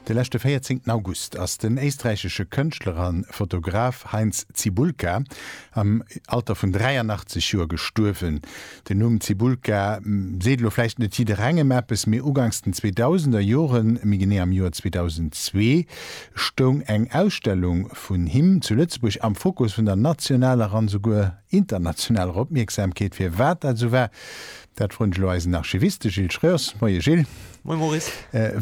De leschte 14 August ass den éisträichesche Kënschtler a Fotograf Heinz Cibulka am Alter vun 83 Joer gestuerwen. Den Numm Cibulka seet elo vläicht net jidderengem eppes, mee uganks den 2000er Joren, méi genee am Joer 2002, stoung eng Ausstellung vun him zu Lëtzebuerg am Fokus vun der nationaler an esouguer internationaler Opmierksamkeet. Firwat dat esou war, Dat froen ech elo eisen Archiviste Gilles Schreurs. Moie Gilles. Moie Maurice.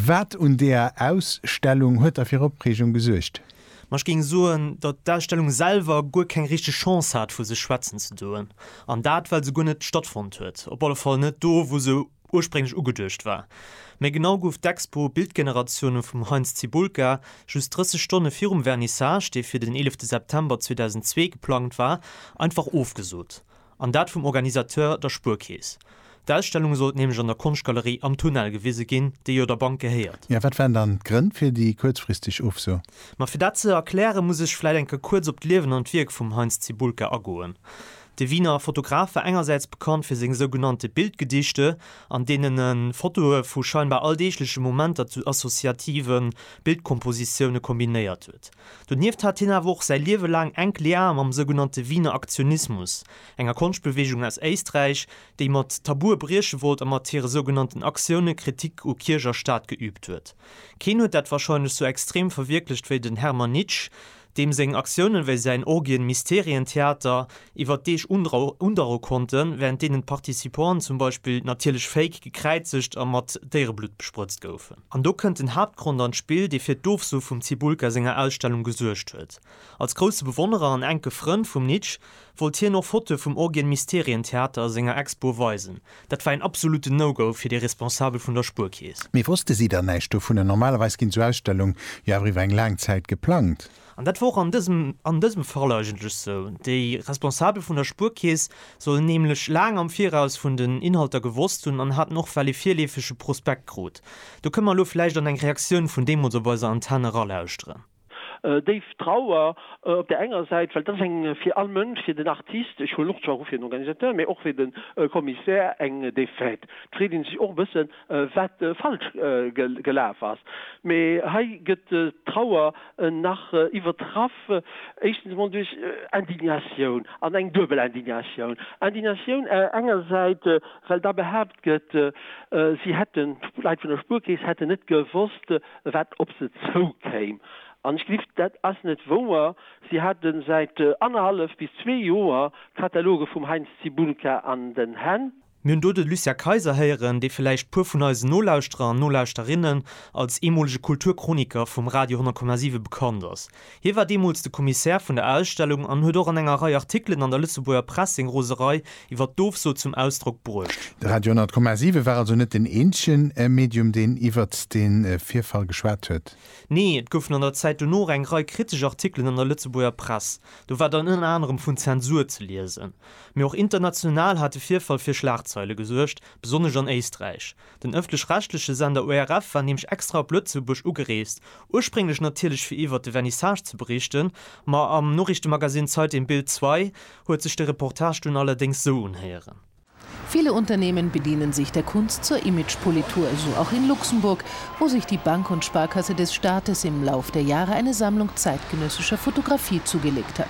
Wat un deeër Ausstellung huet da fir Opreegung gesuergt? Ma ech géing soen, datt d'Ausstellung selwer guer keng richteg Chance hat vu sech schwätzen ze doen. An dat well se guer net stattfonnt huet, op alle Fall net do wou se ursprénglech ugeduecht war. Méi genau gouf d'Expo Bildgeneratioune vum Heinz Cibulka just 30 Stonne virum Vernissage, dee fir den 11 September 2002 geplangt war, einfach ofgesot. An dat vum Organisateur, der Spuerkeess. D'Ausstellung sollt nämlech an der Konschtgalerie Am Tunnel gewise ginn, déi jo der Bank gehéiert. Jo, wat waren dann d'Grënn fir déi kuerzfristeg Ofso? Ma fir dat ze erklären, muss ech vläit eng Kéier kuerz op d'Liewen an d'Wierk vum Heinz Cybulka agoen. De Wiener Fotograf war engersäits bekannt fir seng sougenannte Bildgedichte, an deenen e Fotoe vu scheinbar alldeegleche Momenter zu associative Bildkompositioune kombinéiert huet. Donieft hat hien awer och säi Liewe laang enk Liae mam sougenannte Wiener Aktionismus, enger Konschtbeweegung aus Éisträich, déi mat Tabue brieche wollt a mat hire sougenannten Aktioune Kritik u Kierch a Staat geüübt huet. Keen huet dat warscheinlech sou extrem verwierklecht wéi den Hermann Nitsch, deem seng Aktiounen, wéi säin Orgien-Mysterien-Theater, iwwer Deeg undauere konnten, wärend deenen d'Participanten zum Beispill natierlech féik, gekräizegt a mat Déiereblutt bespritzt goufen. An do kënnt den Haaptgrond an d'Spill, dee fir d'Ofsu vum Cibulka senger Ausstellung gesuergt huet. Als grousse Bewonnerer an enke Frënd vum Nitsch wollt hien och Fotoe vum Orgien Mysterien Theater a senger Expo weisen. Dat war een absolutten No-Go fir de Responsabel vun der Spuerkeess. Mee wosste si dann näischt dovun? Normalerweis ginn sou Ausstellung jo awer iwwer eng laang Zäit geplangt. An dat war och an dësem, an dësem Fall eigentlech esou. Déi Responsabel vun der Spuerkeess sollen nämlech laang am Viraus vun den Inhalter gewosst hunn an haten och well ee virleefege Prospekt krut. Do kënn mer elo vläicht an eng Reaktioun vun deemools op eiser Antenn eralauschteren. Déif Trauer op där enger Säit, well dat ass eng, fir all Mënsch, fir den Artist, ech huelen och zwar u fir den Organisateur, mä och fir de Commissaire, eng Défaite. D'freet ee sech och e bëssen, wat falsch gelaf ass. Mee hei gëtt d'Trauer nach iwwertraff, éischtens emol duerch Indignatioun, an eng duebel Indignatioun. Indignatioun enger Säit, well da behaapt gëtt, si hätten, d'Leit vun der Spuerkeess hätten net gewosst, wat op se zoukéim. An ech gelift, dat ass net wouer. Si hate säit annerhallef bis zwee Joer Kataloge vum Heinz Zibulka an den Hänn. Mir hunn do de Lucien Kayser héieren, dee vläicht puer vun eisen Nolauschterer an Nolauschterinnen als eemolege Kulturchroniqueur vum Radio 10,7 bekannt ass. Hie war deemools de Commissaire vun der Ausstellung an huet och an enger Rei Artikelen an der Lëtzebuerger Press seng Roserei iwwer d'Ofso zum Ausdrock bruecht. De Radio 10,7 war also net deen eenzege Medium, deen iwwert dee Virfall geschwat huet? Nee, et goufen an der Zäit dono och eng Rei kritesch Artikelen an der Lëtzebuerger Press. Do war dann ënner anerem vun Zensur ze liesen. Mee och international hat de Virfall fir Schlagzeile gesuergt, besonnesch an Éisträich. Den ëffentlech-rechtleche Sender ORF war nämlech extra op Lëtzebuerg ugereest, ursprénglech natierlech fir iwwert de Vernissage ze berichten, ma am Noriichtemagazin Zeit im Bild Zwei huet sech de Reportage dunn allerdéngs sou unhéieren. Viele Unternehmen bedienen sich der Kunst zur Imagepolitur, so auch in Luxemburg, wo sich die Bank und Sparkasse des Staates im Lauf der Jahre eine Sammlung zeitgenössischer Fotografie zugelegt hat.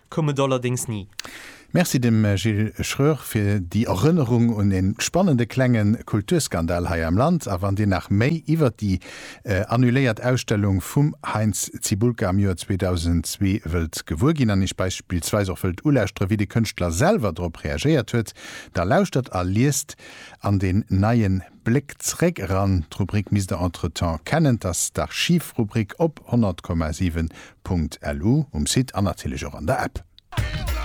koum et allerdéngs ni. Merci dem Gilles Schröer fir déi Erënnerung un e spannende klenge Kulturskandal hei am Land. A wann Dir nach méi iwwert déi annuléiert Ausstellung vum Heinz Cibulka am Joer 2002 wëllt gewuer ginn an Iech beispillsweis och wëllt ulauschteren, wéi de Kënschtler selwer drop reagéiert huet, da lauschtert a liest an den neien. Bléck zréck eran d'Rubrik misst der entretemps kennen, t'ass d'Archiv-Rubrik op 100,7.lu um Site an natierlech och an der App.